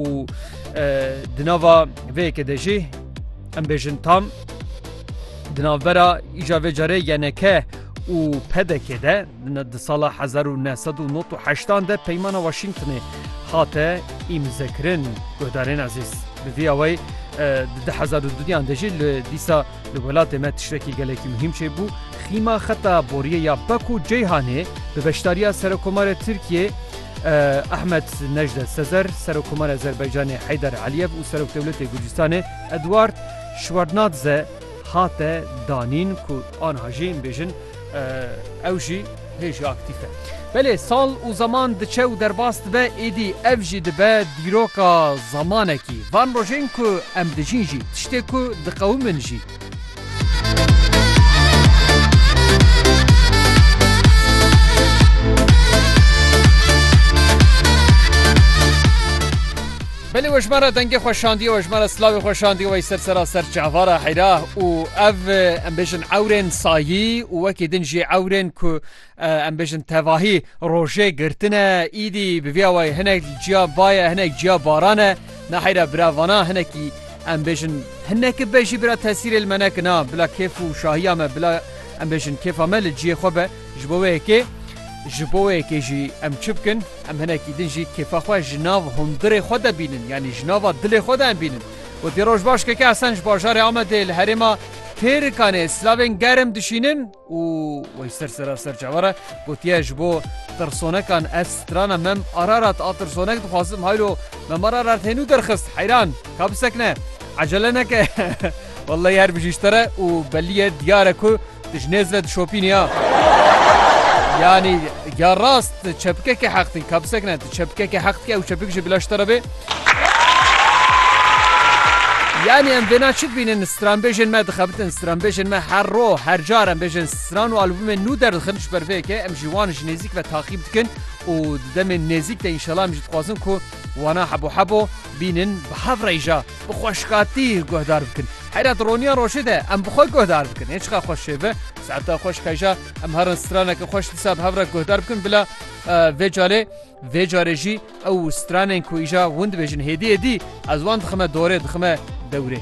û di nava vê yekê de jî em bêjin tam di navbera îja vê carê yeneke û pedekê de di sala 1998 de peymana Washingtonê hate îmzekirin guhdarên ezîz bi vî awey di 2002 de jî li dîsa Li welatê me tiştekî gelekî muhîm çêbû, xîma xeta boriyê ya Bak û Ceyhanê bi beşdariya Serokomarê Tirkiyê Ehmed Nejde Sezer, Serokomarê Azerbaycanê Heyder Aliyev û Serokdewletê Gurcistanê Eduard Şwernadze hate danîn ku anha jê yên bêjin Ew jî hê jî aktîf e. Belê sal û zeman diçe û derbas dibe êdî ev jî dibe dîroka zemanekî. Van rojên ku em dijîn jî tiştê ku diqewimin jî. Belê we ji man re dengê xwe şandiye we ji man re silavê xwe şandiye wey ser sera ser çavara heyra û ev em bêjin ewrên sayî û wekî din jî ewrên ku em bêjin tevahî rojê girtine îdî bi vîya wey hinek ciya baye hinek ciya baran e na heyra bira vana hinekî em bêjin hinekî be jî bira tesîrê li me nekina bila kêf û şahiya me bila em bêjin kêfa me li ciyê xwe be. Ji bo wê yekê ji bo wê yekê jî em çi bikin? Em hinekî din jî kêfa xwe ji nav hundirê xwe de bînin yanî ji nava dilê xwe de em bînin. Gotî roj baş keke Hesen ji bajarê Amedê li herêma Têrikanê silavên germ dişînin û wey ser sera ser çawa re gotiye ji bo tirsonekan ez strana mem Ararat a tirsonek dixwazim haylo mem Ararat hênû derxist heyran ka bisekine ecele neke Welleyî her bijî ji te re û belî ye diyar e ku Tu ji nêz ve dişopîn ya. Yanî ya rast tu çepikekê heq dikî, kabisek ne, tu çepikekê heq dikî ew çepik jî bila ji te re bê. Yanî em vêna çi dibînin stranbêjên me dixebitin, stranbêjên me her roj, her car em bêjên stran û albûmên nû derdixin ji ber vê yekê em jî wan ji nêzîk ve taqîb dikin û di demên nêzîk de înşela em jî dixwazin ku wana hebo hebo bînin bi hev rêja. Bi xweşkatî guhdar bikin. Heyra di roniya rojê de em bi xwe guhdar bikin. Hê çiqa xweş şêve, saeta xweş qeja em herin straneke xweş dîsa bi hev re guhdar bikin bila vê carê vê carê jî ew stranên ku îja hûn dibêjin hêdî hêdî ez wan dixime dorê dixime dewrê.